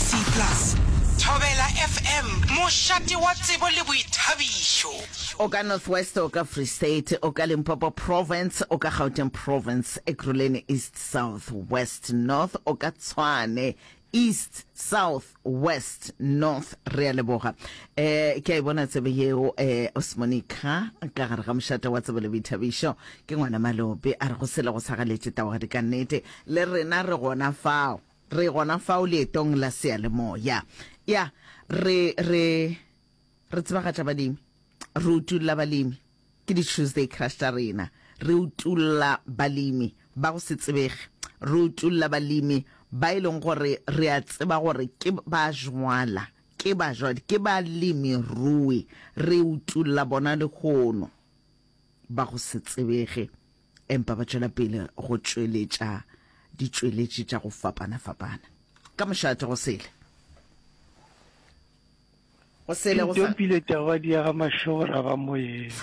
C plus. Thobela FM, mošate wa tsebo le boithabišo. O ka North West, o ka Free State, o ka Limpopo Province, o ka Gauteng Province, Ekurhuleni East, South, West, North, o ka Tshwane East, South, West, North. Re a leboga. Eh, ke a e bona tsebe yeo eh, Osmonica ka gare ga mošate wa tsebo le boithabišo. Ke ngwana Malope a re go sele go sagaletše tawagadika nnete. Le rena re gona fao. Re gona fao leetong la seyalemoya. Ya, re, re, re tsebagatša balemi. Re utulla balemi. Ke di-Tuesday Crush tša rena. Re utulla balemi ba go se tsebege. Re utulla balemi ba e leng gore re a tseba gore ke ba jwala, ke ba jwadi, ke balemirui. Re utulla bona lehono ba go se tsebege. empa ba tšwela pele go tšweletša ditšweletši tša go fapana-fapana ka mošate go sele go sele go sa pile taba di ga mashora ga moyeng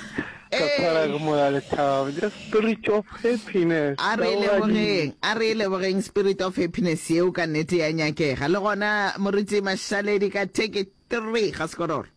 ka kwara ke moya le thabo the spirit of happiness a re le boreng a re le boreng spirit of happiness yeo ka nete ya nyakega le gona moriti mashaledi ka take 3 ga sekororo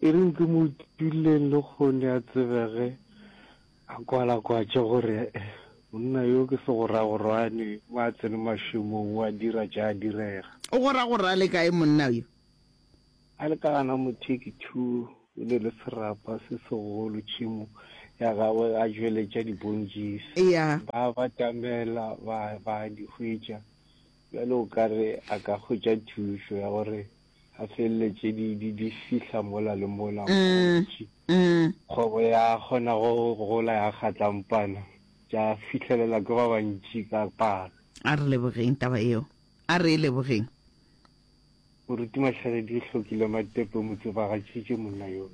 E reng ke mo duleng le kgone a tsebege a kwalakwatše gore monna yo ke segoragorwane o a tsene mašemong o a dira tša a direga. O goragora a le kae monna yo? A le ka gana mo Take Two e ne le serapa se segolo tšhemo ya gagwe a tšweletša dibontšis Eya. ba batamela ba ba di hwetša bjale o ka re a ka hwetša thušo ya gore a felele tše di di di fihla mola le mola go gontši. Kgwebo ya kgona go gola ya kgatla mpana tša fihlelela ke ba bantši ka palo. A re lebogeng taba yeo. A re e lebogeng. Moruti Mahlagedi e hlokile matepe mo tsebagatšitše monna yo.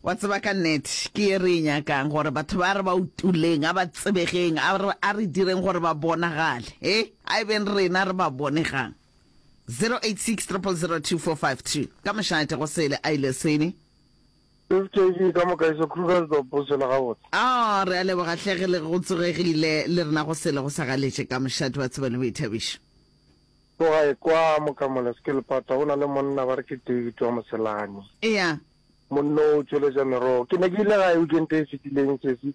Wa tseba ka nnete ke ye re e nyakang gore batho ba re ba utuleng a ba tsebegeng a re a re direng gore ba bonagale he a e beng rena re ba bonegang. 0860002452 ka mošate go sele a ile sele. Fkv ka moka iso Krugersdorp o sele gabotse. Oh re a leboga hle ge le go tsogegile le rena go sele go sa galetše ka mošate wa tseba le boithabišo. Ko gae kwa Mokamole Skelepata go na le monna ba re ke David wa Moselane. Eya. Monno o tšweletša merogo. Ke ne ke ile gae weekend e fetileng sesi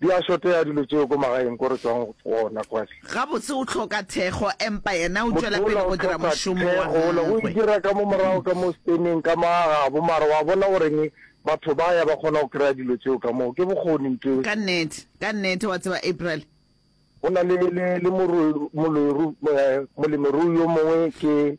Di a šotea dilo tšeo ko magaeng ko re tšwang gona kwale. Gabotse o hloka thekgo empa yena o tšwela pele go dira mošomo wa gagwe. Motho o la o hloka thekgo, o e dira ka mo morago ka mo steneng ka mo agabo mara wa bona goreng batho ba ya ba kgona go kry-a dilo tšeo ka moo, ke bokgoni nto eo. Ka nnete, ka nnete, wa tseba April. Go na le, le, le moro, moloru, molemirui yo mongwe ke.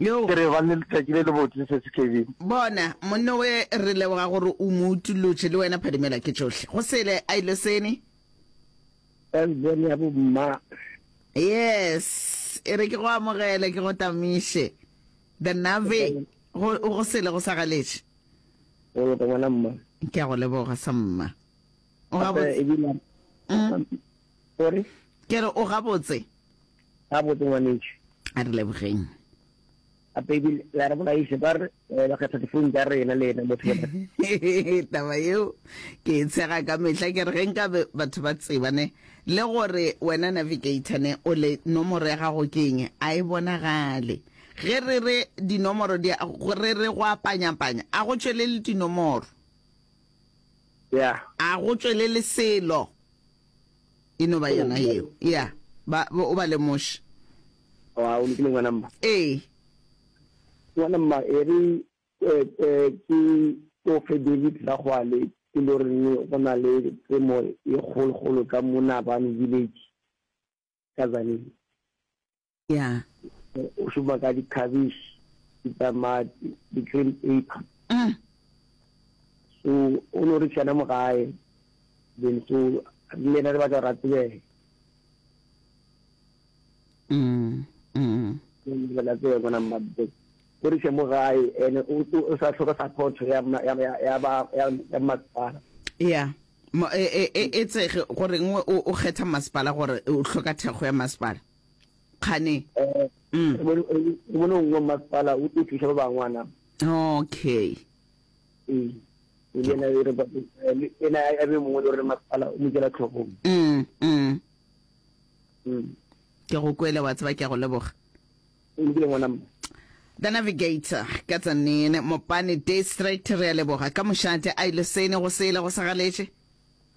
Yo. Ke re ba ne letšatši le le botse se se Kevin. Bona, monno we re leboga gore o mo utulotše le wena phadimela ke tšohle. Go sele a ile sene. As bone ya bo mma. Yes, e re ke go amogele ke go tamiše. The Nave go go sele go sa galetše. O go bona mma. Ke a go leboga sa mma. O ga botse. Sorry. Ke re o ga botse. ga botse ngwanetši a re lebogeng a pedi la re bolaise ba re eh, ba kgetha difounu tsa rena le ena motho taba yeo ke e tshega ka mehla ke re ge nka batho ba tsebane le gore wena navigator ne o le nomoro ya gago ke eng a e bonagale ge re re dinomoro re re go apanyapanya a go tšwelele dinomoro Yeah. A go tšwelele selo. E no ba yona yeo. Yeah. Ba, ba, o ba lemoše. O a, o lokile ngwana mma. Ee. Ngwana mma, e re, eh, eh, ke tsofe David Ragwale, ke lo reng go na le temo e kgolokgolo ka mo Nabani Village, ka Tzaneen. ya o šoma ka di-cabish ditamati di-green paper mm. so o no re tšhana mo gae then so le yena re batla gore a tsebege la tsebe gona mmabe o re mo gae ene o sa tlhoka support ya masepala ya e tsege gore nngwe o kgetha masepala gore o tlhoka thekgo ya masepala kgane um mono nngwe mmasepala o tlo thusa ba bangwana okay ee e le ena e re ba ena a be mongwe le gore masepala o mo jela tlhogong mm mm mm ke go kwele wa tseba ke go leboga o lokile ngwana mma The Navigator ka tsanene Mopane District re a leboga ka mošate a ile sene go sele go sagaletše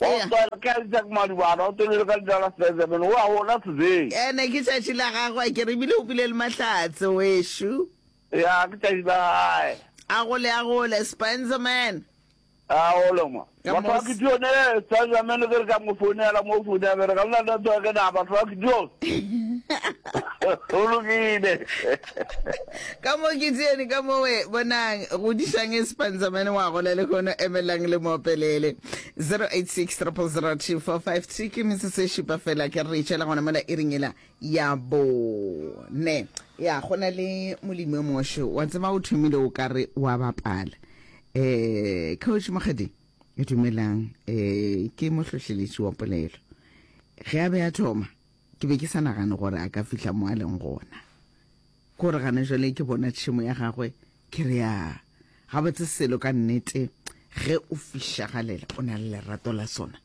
Eya. Gospel ke Isaac Madubana, o tholile ka Dallas Benjamin, o a gola today. Ene ke tšatši la gagwe akere ebile o bile le mahlatse wešo. Ya, ke tšatši la gae. A gole a gole Spencerman. A gole ma. Ka Batho ba mos- Gideon, eh, Spencerman ke re ka mo founela mo foune ya bereka, le na network na batho ba Gideon. Go lokile. ka mo ke tsene ka mowe bonang go disang e sepanzamane wa gole le gono emelang le moopelele 0860002453 ke metse se šupa fela ke re tšhela gona mola e ringela ya bone ya go na le molimo moshe wa tseba o thomile o ka re wa bapala um coach mokgadi e dumelang um ke mohlohleletši wa polelo ge a be a thoma Ke be ke sa nagane gore a ka fihla mo a leng gona. Ke gore gane jwale ke bona tšhemo ya gagwe, ke re, A, gabotse selo ka nnete ge o fišagalela o na le lerato la sona.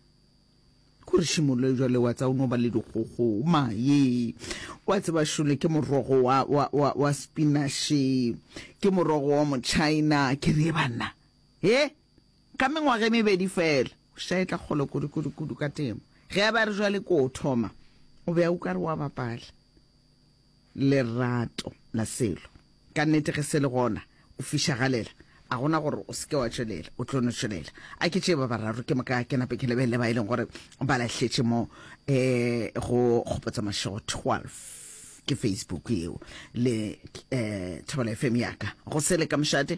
Ke gore šimoloe jwale wa tsa o no ba le dikgogo. Mae! Wa tseba, šole, ke morogo wa, wa, wa, wa spinashe. Ke morogo wa Motšhaena. Ke re, Ye banna! He! Ka mengwaga e mebedi feela, o šetše a etla kgole kudu-kudu-kudu ka temo. Ge a be a re bjale ke o thoma, o be a uka re o a bapala. Lerato la selo. Ka nnete ge se le gona, o fišagalela. A go na gore o se ke wa tšwelela, o tlo no tšwelela. A ke tšee ba bararo ke moka ke nape ke lebelele ba e leng gore ba lahletše mo um go Kgopotsa Mašego 12, ke Facebook yeo, le um Thobela FM ya ka. Go sele ka mošate.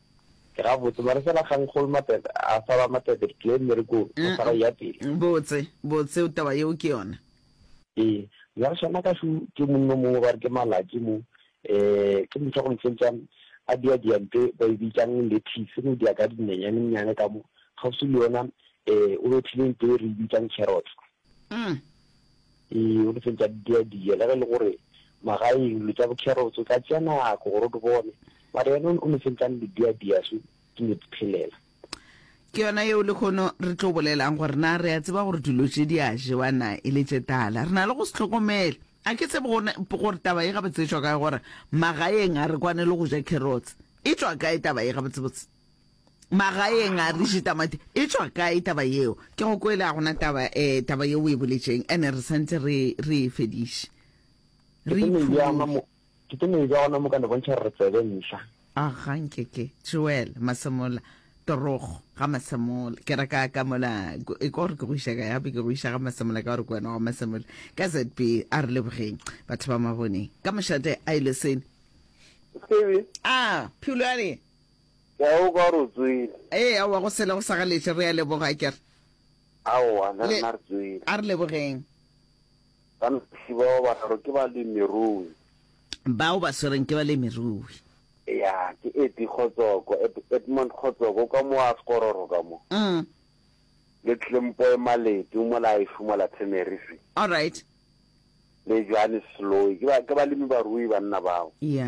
Ke gabotse, mare fela ga Nkgol Mapete a sa ba Mapete ke tlile mmerekong go sa ra ya pele. Botse, botse o taba yeo ke yona. Ee, mare sona ka su ke monna o mongwe ba re ke Malaki mo, ee, ke motho wa go ntšentšang a dia diante ba e bitšang lettuce go dia ka dinenyanennyane ka mo, kgauswi le yona, ee, o bethile nto e re e bitšang carrots. mm. ee o letseng tša diadiya le ge e le gore magaeng lo tša bokherotso tla tšea nako gore o di bone mare yone o letseng tla le diadiya so ke ne phelela ke yona yeo le kgono re tlo bolelang gore na re a tseba gore dilo tše di a jewa na e le tše tala re na le go se tlhokomele a ke tsebe gore taba e gabotsetswa kae gore magaeng a re kwane le go ja carrots e tswa kae taba e gabotsebotse magaeng a re je tamati e tswa kae taba yeo ke go kwele a gona taba um taba yeo o e boletseng ande re santse re re e fediše re ke tlo meja gona mo ka ne bontšha gore re tsebe ntlha a gankeke joel masemola torogo ga masemola ke reka ka mola e ka gore ke go iša ka yape ke go iša ga masemola ka gore ke wena wa masemola ka zb a re lebogeng batho ba maboneng ka mošate a ile sene a phulwane Eoka ro tswile. Ee, aowa, go sele go sa ga letle. Re a leboga, akere? Aowa, le rena re tswile. A re lebogeng. Banaphiri bao bararo ke balemirui. Bao ba swereng ke balemirui. Ya, ke Eddie Kgotsoko, Ed, Edmund Kgotsoko, o ka mo a Sekororo ka mo. Mm. Le Tlempoe Maleti, o mola Aishu mola Teneriffe. All right. Le Johannes Seloyi. Ke ba, ke balemi-barui banna bao. Ya.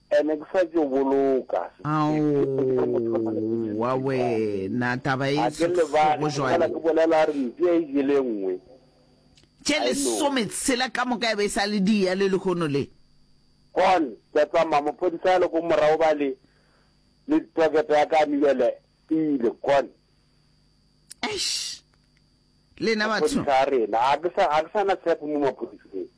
Ee, ne ke sa tšo boloka Aowa wena, taba e sego jwale. Tše lesometshela ka moka e be e sa le di eya le lehono le. Con, ke a tsamaya, maphodisa a le ko morago ba le, le tokete ya ka a mibele e ile, con. Eish! Lena batho. Maphodisa a rena, a ke sa na tshepo mo maphodiseng.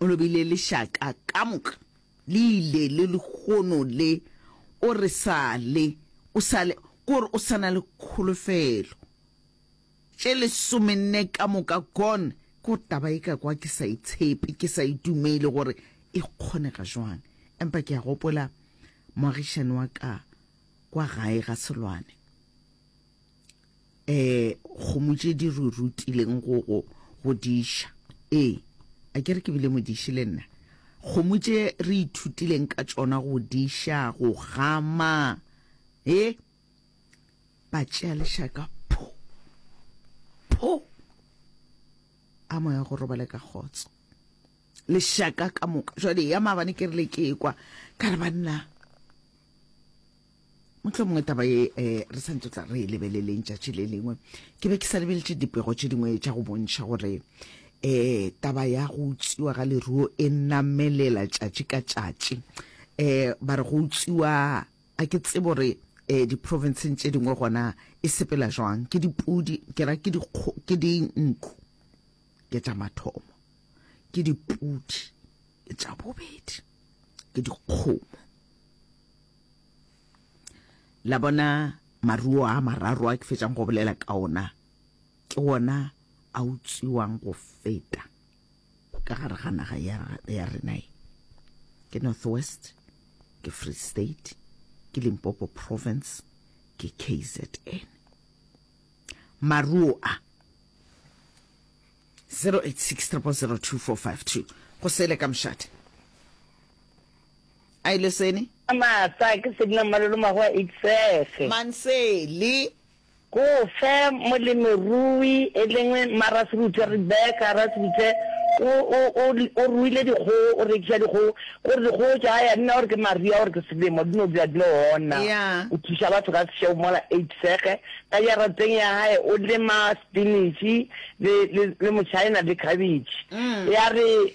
O lobile lešaka ka moka le ile le lehono le o re sa le o sa le kore o sana le kholofelo tše lesomenne ka moka gon ko taba e ka kwa ke sa itshepe ke sa itumele gore e kgonega jwang empa ke a gopola moagišani wa ka kwa gae ga selwane um kgomo tše di re rutileng go go go diša ee a ke re ke bile modiši le nna kgomo tše re ithutileng ka tšona go diša go gama e ba tšea lešaka pho pho a moya go robale ka kgotso lešaka ka moka jwale ya maabane ke re le ke kwa ka re banna motlho mongwe taba ye um re santse tla re e lebeleleng tšatši le lengwe ke be ke sa lebeletše dipego tše dingwe tša go bontšha gore um taba ya go utsiwa ga leruo e namelela tšatši ka tšatši um ba re go utsiwa a ke tsebo gore um diprovinceng tše dingwe gona e sepela jwang ke dipudi ke ra ke dinku ke tša mathomo ke dipudi ke tša bobedi ke dikgomo la bona maruo a mararo a ke fetšang go bolela ka ona ke ona a utswiwang go feta ka gare ga naga ya rena e ke north west ke free state ke limpopo province ke kzn maruo a 086 go sele ka mošate A ile seni. A maatla, ke se dina malolo mago a itsege. Man se li. Go fe molemirui e lengwe mma Rasebuthe, Rebecca Rasebuthe, o, o, o, o ruile dikgogo, o rekiša dikgogo, gore dikgogo tša hae a di na gore ke maria gore ke selemo, di no dula di le ona. Ya. O thuša batho ka sešego mola a itsege. Ka jarateng ya hae o lema spinach le, le, le motšhaena le khabetšhe. Ya re.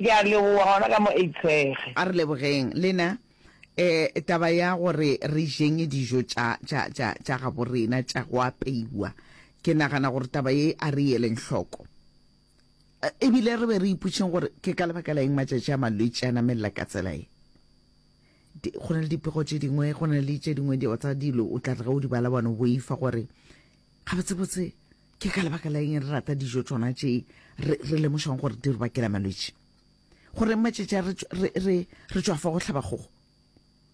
Ke a leboga gona ka mo Eitshege. A re lebogeng le na. Eh, taba ya gore re jeng dijo tša, tša, tša, tša gabo rena tša go apeiwa, ke nagana gore taba ye a re eleng hloko. Eh, e bile re be re iputšeng gore ke ka lebaka la eng matšatši a malwetši a namelela ka tsela ye. Di, go na le dipego tše dingwe, go na le tše dingwe tsa dilo o tla re ge o di bala bone o boifa gore Gabotsebotse, ke ka lebaka la eng re rata dijo tsona tše re lemošang gore di re bakela malwetši? Gore matšetši a re tšwafa go hlaba kgogo?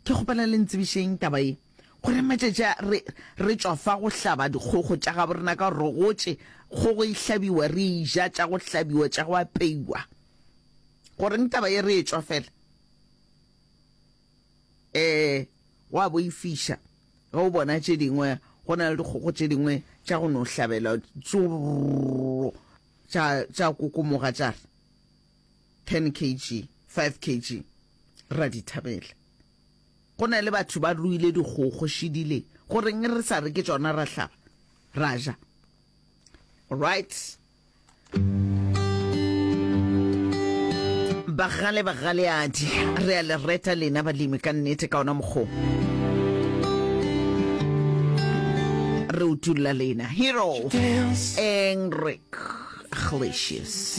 Ke kgopela le ntsebišeng taba e. Gore matšetši a re tšwafa go hlaba dikgogo tša gabo rena ka gore gotše kgogo e hlabiwa, re e ja tša go hlabiwa, tša go apeiwa. Goreng taba e re e tšwafela? Ee, go a boifiša ge o bona tše dingwe go na le dikgogo tše dingwe tša go no hlabela tsurro tša kokomoga tša re 10 kg 5 kg ra di thabela. Go na le batho ba ruile dikgogo šidile goreng re sa re ke tšona ra hlaba ra ja. Right. bagale bagaleadi re a le reta lena balemi ka nnete ka ona mokgwa re utulla lena hero enric Glacius.